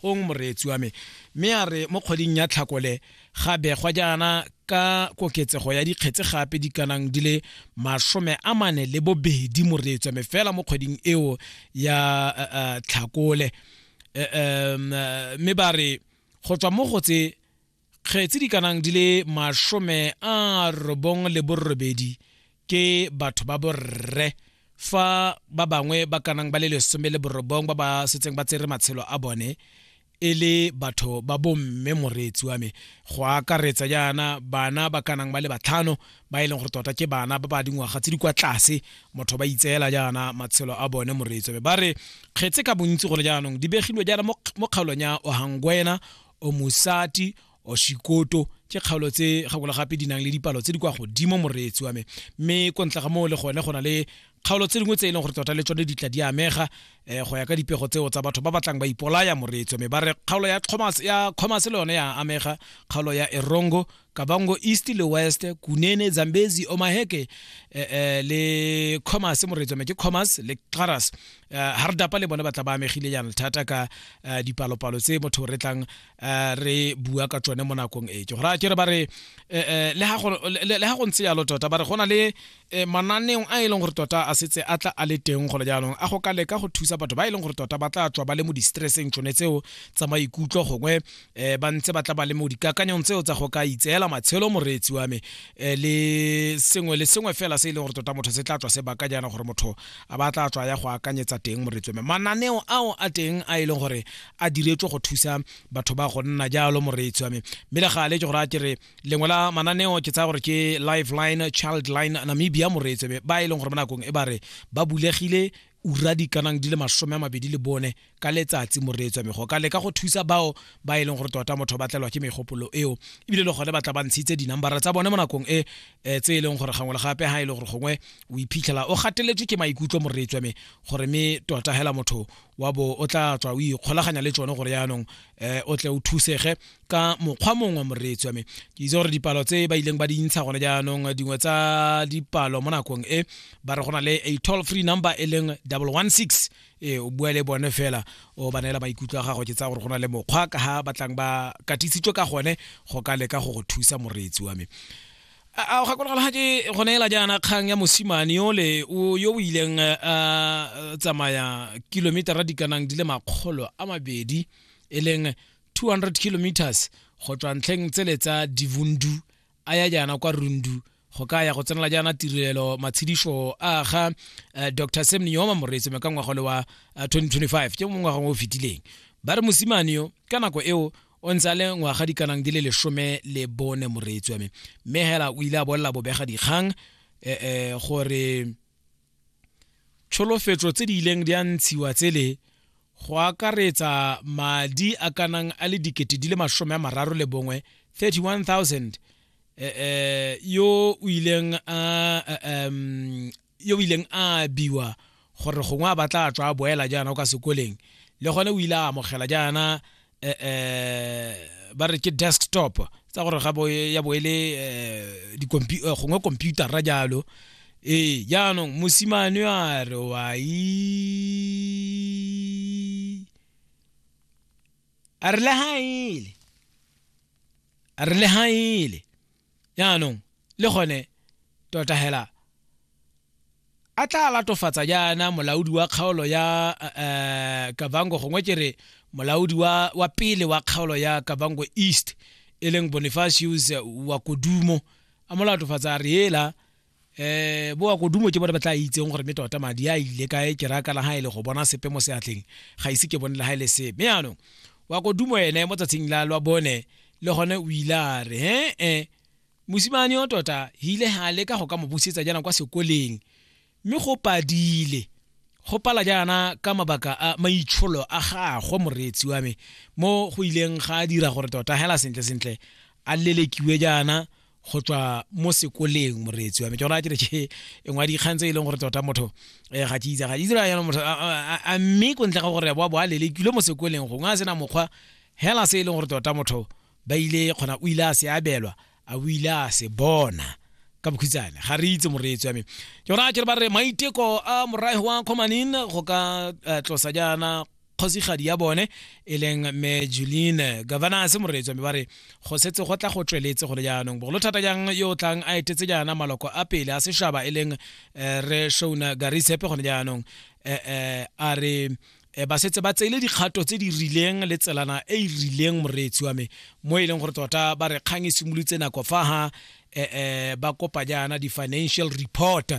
gong moreetsi wa me mme a re mo kgweding ya tlhakole ga begwa jaana ka koketsego ya dikgetse gape di kanang di le masome a mane le bobedi moreetsi wa me fela mo kgweding eo ya uh, uh, tlhakole uh, um, uh, mme ba re go tswa mo go tse kgetsi di kanang di le masome a robong le borobedi ke batho ba borre fa ba bangwe ba kanang ba le lesome le borobong ba ba setseng ba tsere matshelo a bone e le batho ba bomme moreetsi wa me go akaretsa jaana bana ba kanang ba le batlhano ba e leng gore tota ke bana ba ba dingwaga tse di kwa tlase motho ba itseela jaana matshelo a bone moreetsi wa me ba re kgetse ka bontsi gone jaanong di begilwe jaana mo kgaolong ya ohangwena o mosati o shikoto ke kgaolo tse gakolo gape di nang le dipalo tse di kwa godimo moreetsi wa me mme ko ntle ga moo le gone go na le kgaolo tse dingwe tse e leng gore tota le tsone di tla di amega um go ya ka dipego tseo tsa batho ba batlang ba ipolaya moreetsi wa me ba re kgaolo ya commerce le yone ya amega kgaolo ya erongo kavango east le west kunene zambezi omaheke eh, eh, le commerce moretsome ke commerce le claras eh, ha re dapa le bona ba tla ba amegile yana thata ka eh, dipalopalo tse motho re tlang eh, re bua ka tsone mo nakong e ke gore a ke re ba re eh, eh, le ha go- le- le ha go ntse yalo tota ba re go na le e mananeong a e leng gore tota a setse a tla a le teng gole jaanong a go ka leka go thusa batho ba e leng gore tota ba tla tswa ba le mo di-stresseng tšone tseo tsa maikutlo gongwe um ba ntse ba tla ba le mo dikakanyong tseo tsa go ka itseela matshelo moreetsi wa me um le sengwe le sengwe fela se e leng gore tota motho se tla tswa se baka jaana gore motho a ba tla tswa ya go akanyetsa teng moreetsi wa me mananeo ao a teng a e leng gore a diretswe go thusa batho ba go nna jalo moreetsi wa me mme le gale ke gore a ke re lengwe la mananeo ke tsaya gore ke lifeline childline namibia moreetsebe ba e leng gore mo nakong e ba re ba bulegile ura di kanang di le masome a mabedi le bone ka letsatsi moreetswa mego ka leka go thusa bao ba e leng gore tota motho ba tlelwa ke megopolo eo ebile le gone ba tla ba ntshitse dinambara tsa bone mo nakong e eh, tse e leng gore gangwe le gape ga e le gore gongwe o iphitlhela o gateletswe ke maikutlo moreetswa me gore me tota hela motho wa bo o tla tswa o ikgolaganya le tsone gore yaanong um o tle o thusege ka mokgwa mongwe wa moreetsi wa me ke itse gore dipalo tse ba ileng ba di ntsha gone jaanong dingwe tsa dipalo mo nakong e ba re go na le a toll free number e leng double one six ee o bua le bone fela o ba neela maikutlo a gago ke tsaya gore go na le mokgwa ka ga batlang ba katisitswe ka gone go ka leka go go thusa moreetsi wa me a o gakologala ga ke go neela jaana kgang ya mosimane yole yo o ileng a tsamaya kilometera di kanang di le makgolo a mabedi e leng 200 kilometers go tswa ntlheng tsele tsa divundu a ya jaana kwa rundu go ka ya go tsenela jaana tirelo matshedišo a ga eh, dr sam neoma moreetsi me ka ngwaga le wa 2025 eh, ke mo ngwaga o fetileng ba re mosimane yo ka nako eo o ntse a le ngwaga dikanang di le lesome le bone moreetsi wa me mme hela o ile a bolela bobega dikgang um gore tsholofetso tse di ileng di a ntshiwa tsele go akaretsa madi a kanang a le dikete di le masome a mararo le bongwe 31000 eh, eh, yo o ileng a um, yo o ileng a biwa gore gongwe a batla a tswa a boela jaana o ka sekoleng le gone o ile a amogela jaana eh, eh, ba re ke desktop tsa gore ga bo ya bo ele eh, di computer eh, gongwe computer ra jalo ee jaanong mosimane a re wa a re le ga ele a re le ga ele jaanong le gone tota hela a tla latofatsa jaana molaodi wa kgaolo ya uh, kavango gongwe ke re molaodi wa, wa pele wa kgaolo ya kavango east e leng bonifacius wa kodumo a mo latofatsa a re ela eh boa kodumo ke bone ba tla itseng gore me tota madi a ile kae ke raya kana ga e le go bona sepe mo seatleng ga ise ke bone le ga e le sepe me yaanong wa kodumo ene mo tsatsing la lwa bone le gone o ile a re he e mosimane o tota hile ha le ka go ka mo busetsa jana kwa sekoleng mme go padile go pala jaana ka mabaka a maitsholo a gagwe moreetsi wa me mo go ileng ga dira gore tota hela sentle sentle a lelekiwe jaana go tswa mo sekoleng moreetsi wa me ke gona ke re ke e ngwa dikgang tse e leng gore tota motho eh, ga ke itse ga itse yana motho a mme ko ntle ga gore boa bo a lelekile mo sekoleng gongwe a sena mokgwa hela se e leng gore tota motho ba ile kgona o ile a se abelwa a o ile a se bona ka bokhutsane ga re itse moreetsi wa me ke gona ke re ba re maiteko a morae wa kgomanin go ka eh, tlosa jaana kgosigadi ya bone e leng me juline governance moretswa mme ba re go setse go tla go tsweletse gone jaanong bogolo thata jang yo o tlang a etetse jaana maloko a pele a sešaba e leng eh, re shona garisepe gone jaanong eh, eh, a re e ba setse ba tseile dikgato tse di rileng le tselana e e rileng moreetsi wa me mo e leng gore tota ba re kgang e simolotse nako fa ha um ba kopa jaana di-financial report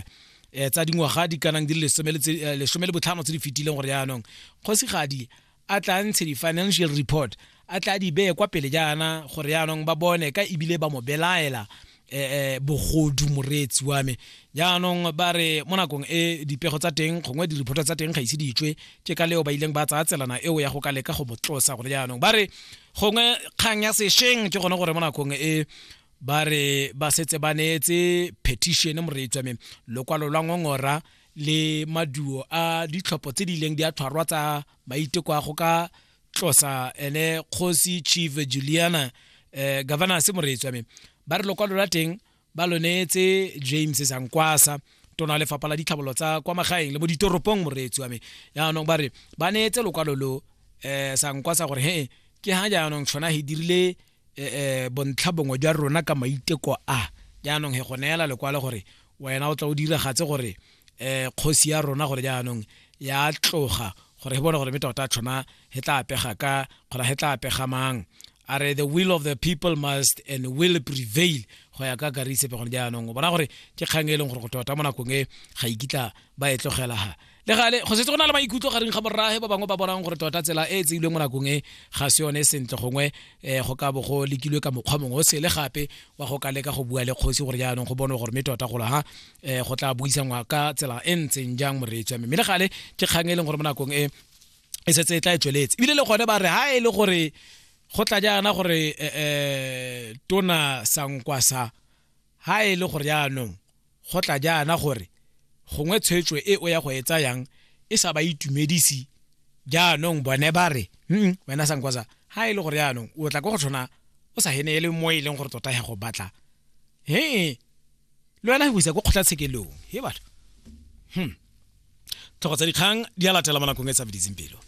eh, tsa dingwaga di kanang di le lesome le eh, botlhano tse di fetileng gore jaanong kgosigadi a tla ntshe di-financial report a tla di beye kwa pele jaana gore jaanong ba bone ka ebile ba mo belaela eh, eh, bogodu moreetsi wa me jaanong ba re mo nakong e dipego tsa teng gongwe di-report tsa teng ga ise di tswe ke ka leo ba ileng ba tsaya tselana eo ya go ka leka go mo tlosa gore jaanong ba re gongwe kgang ya sešeng ke gone gore mo nakong e ba re ba setse ba neetse petition moreetswa me lokwalo lwa ngongora le maduo a ditlhopho tse di ileng di a tshwarwa tsa maiteko a go ka tlosa ene kgosi chief juliana eh, governor se moreetswa me ba re lokwalo la teng ba lo neetse james sankwasa tona lefapha la ditlhabolo tsa kwa magaeng le mo ditoropong moreetsi wa me yaanong ba re ba neetse lokwalo lo um eh, sankwasa gore he ke ga jaanong tshwana he dirile e, e, bontlha bongwe jwa rona ka maiteko a jaanong he go neela lekwalo gore wena o tla o diragatse gore um kgosi ya rona gore jaanong ya tloga gore he bone gore me tota tshwana he tla apega ka kgona he tla apega mang a re the will of the people must and will prevail go ya ka karisepe gone jaanong o bona gore ke kgang e leng gore go tota mo nakong e ga ikitla ba e tlogelaga le gale go setse go na le maikutlo gareng ga borraage ba bangwe ba bonang gore tota tsela e e tseilweng mo nakong e ga se yone e sentle gongwe um go ka bo go lekilwe ka mokgwa mongwe o sele gape wa go ka leka go bua le kgosi gore jaanong go bonwe gore mme tota golo ha um go tla buisangwa ka tsela e ntseng jang moreetsi wa mme le gale ke kgang e leng gore mo nakong e e setse e tla e tsweletse ebile le gone ba re ha e le gore go tla jaana gore um tona sankwasa Ga e le gore jaanong go tla jaana gore gongwe tshwetso e o ya go e tsayang e sa ba itumedisi jaanong bone ba re mm wena sankwaza ga e le gore jaanong o tla ko go tshwana o sa hene e le mo e leng gore tota ya go batla he le wena go isa ko kgotlatshekelong he batho hmm tlhogo tsa dikgang di a latela mo nakong e tsabeditseng pelo